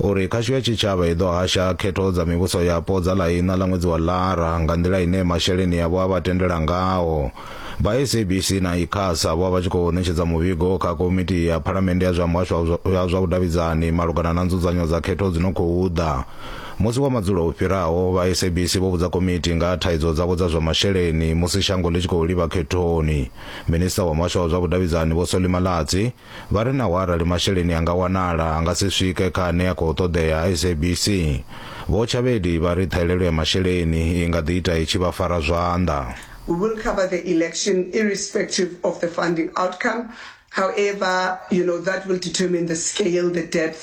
uri khasho ya tshitshavha i ḓo hasha khetho dza mivhuso yapo dza ḽa iṋa ḽa ṅwedzi wa ḽara nga nḓila ine masheleni yavho a vha tendela ngaho vha sabc na icasa vho vha tshi khou ṋetshedza muvhigo kha komiti ya phalamennde ya zwa muhasho ya zwa vhudavhidzani malugana na nzudzanyo dza khetho dzi no khou ḓa musi wa madzulo o fhiraho vha sabc vho vhudza komiti nga thaidzo dzavho dza zwa masheleni musi shango ḽi tshi khou livha khethoni minista wa muhasho wa zwa vhudavhidzani vho solimalatsi Vha ri naho arali masheleni a nga wanala, a nga si swike kha ane a khou ṱoḓea SABC. Vho Tshavhedi vha ri ṱhahelelo ya masheleni i nga ḓi ita i tshi vha fara zwanḓa. We will cover the election irrespective of the funding outcome, however, you know, that will determine the scale, the depth,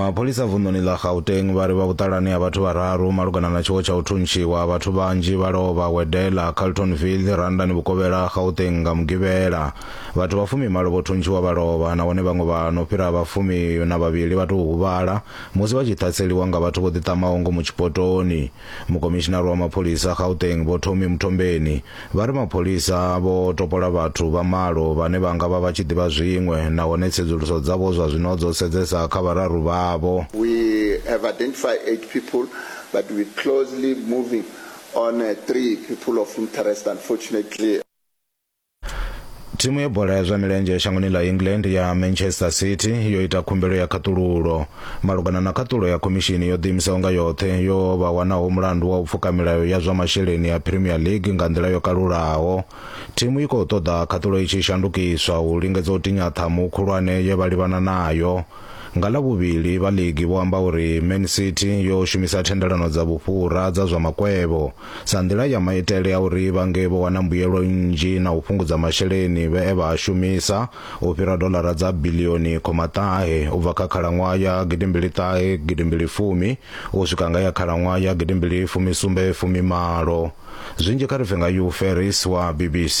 mapholisa vunḓuni ḽa gauteng vha ri vha vhuṱalani ha vhathu vhararu malugana na tshiwo tsha u thuntshiwa vhathu vhanzhi vha lovha wedela carltonville randani vhukovhela gauteng nga mugivhela vhathu vha fumi malo vho thuntshiwa vha lovha nahone vhaṅwe vha no fhira vha fumi na vhavhili vha tou huvhala musi vha tshi ṱhaseliwa nga vhathu vho ḓiṱamaho ngomu tshipotoni Mukomishinari wa mapholisa a Gauteng Vho Tommy Mthombeni vha ri mapholisa vho topola vhathu vha malo vhane vha nga vha vha tshi ḓivha zwiṅwe nahone tsedzuluso dzavho zwa zwino dzo sedzesa kha vhararu vhavho. We have identified eight people but we closely moving on three people of interest unfortunately. thimu ya bola ya zwa milenzhe shangoni ḽa england ya manchester city yo ita khumbelo ya khaṱululo malugana na khaṱulo ya khomishini yo ḓiimisaho nga yoṱhe yo vha wanaho mulandu wa u pfuka milayo ya zwa masheleni ya premier league nga nḓila yo kalulaho thimu i khou ṱoḓa khaṱulo i tshi shandukiswa u lingedza u tinya ṱhamu khulwane ye vha livhana nayo nga ḽa vhuvhili vha ligi vho amba uri man city yo shumisa thendelano dza vhufhura dza zwa makwevho sa nḓila ya maitele a uri vha nge vho wana mbuyelo nnzhi na u fhungudza masheleni vhe e vha a shumisa u fhira dolara dza bilioni khoma ṱahe u bva kha khalaṅwaha ya gidimbili ṱahe gidimbili fumi u swika nga ya khalaṅwaha ya gidimbili fumi sumbe fumi malo zwinzhi kha ri pfe nga Hugh Ferris wa BBC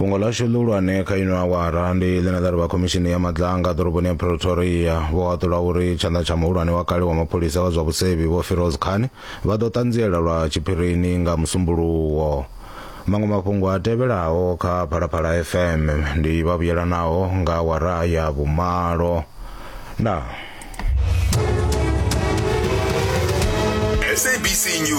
fhungo ḽashu ḽihulwane kha ino awara ndi ḽine ḽa ri vha khomishini ya madlanga ḓoroboni ya pretoria vho haṱula uri tshanḓa tsha muhulwane wa kale wa mapholisa wa zwa vhusevhi vho firoz khan vha ḓo ṱanziela lwa tshiphirini nga musumbuluwo maṅwe mafhungo a tevhelaho kha phalaphala fm ndi vha vhuyelanaho nga awara ya vhumalo na sabc news